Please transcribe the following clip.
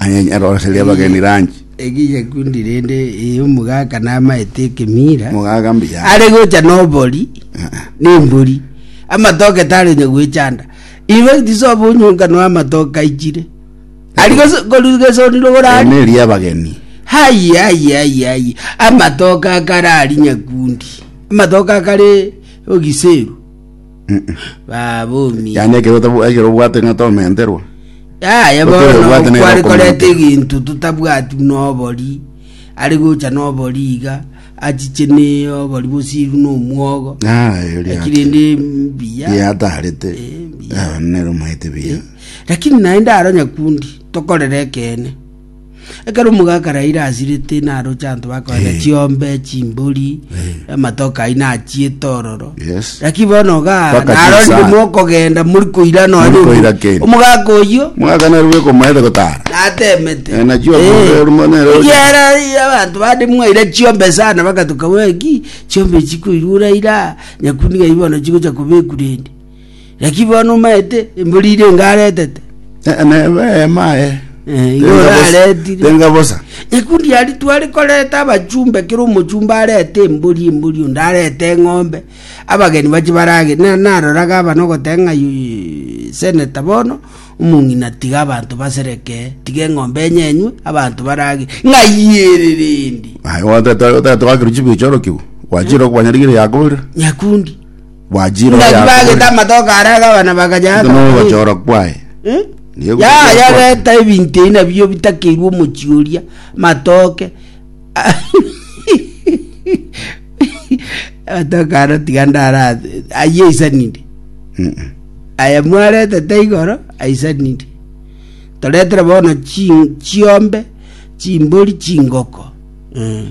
Anyenyere oroserie abageni ranchi. Egicha kundi rende eye omogaka namaete ekemira Mogaga mbuya. are gocha nobori na embori amatoke tare onye gwechanda infact sobo onyonka no amatoke aichire ari gose- koru- gesoniro Aya gorari neri abageni. hayi hayi hayi hayi amatoke akare ari nyakundi amatoke akare ogiseru babumi yaani ekero otabu- ekero obwate ng'a tomenterwa yaya Otere bono obwate nere kwari okomenta. koreta eginto totabwati buna obori ari gocha na obori iga achiche na obori bosiru na omwogo Aye, ori lakini ate. ndi mbuya yatarete Eh, mbuya. nero maete biya lakini naende aro nyakundi tokorera ekeene Ekero omogaka araire asirete naroche abanto bakoenda Eh. chiombe, chimbori, Eh. amatoke aino achiete ororo. Yes. Lakini bono iga Mpaka narorire chisano. mokogenda muri koira Muri nonya koira keri. omogaka oyio Mwaka nero bwekomaete gotara. natemete. Eh, nachio akobe orimo nero. Yera abantu bande mwaira chiombe sana bagatuka weki chiombe chikoirura ira nyakuniga ibono chigocha kobekurende Naki bono omaete embori ire enga aretete, Neba eema aye. Eh, igo Tenga bosa- oraretire. Tenga bosa. ekundi yari twari koreta abachumbe kera omochumbe arete embori embori onde arete eng'ombe abageni bache barage na naroraga aba nogoteba ng'a yu- yu- seneta bono omong'ina tiga abanto basereke tiga eng'ombe enye enywe abanto barage ng'ayiererendi Aye, goteta- goteta wakiruchi bichoro kiu. Gwachire okwanyarigire yakoborire. nyakundi Bwachire Ngaki bagete oyakore. amatoke aria agabana bakanya Ase akabana. nogochora kwaye. Eh? Nigo egochora kwaye. yayareta ebinto ebi nabio bitakeirwe omochi oria matoke amatoke aro tiga ndara ayio aisanire Mm. aya mwaretete igoro aisanire toretere bono chi- chiombe chimbori chingoko Mm.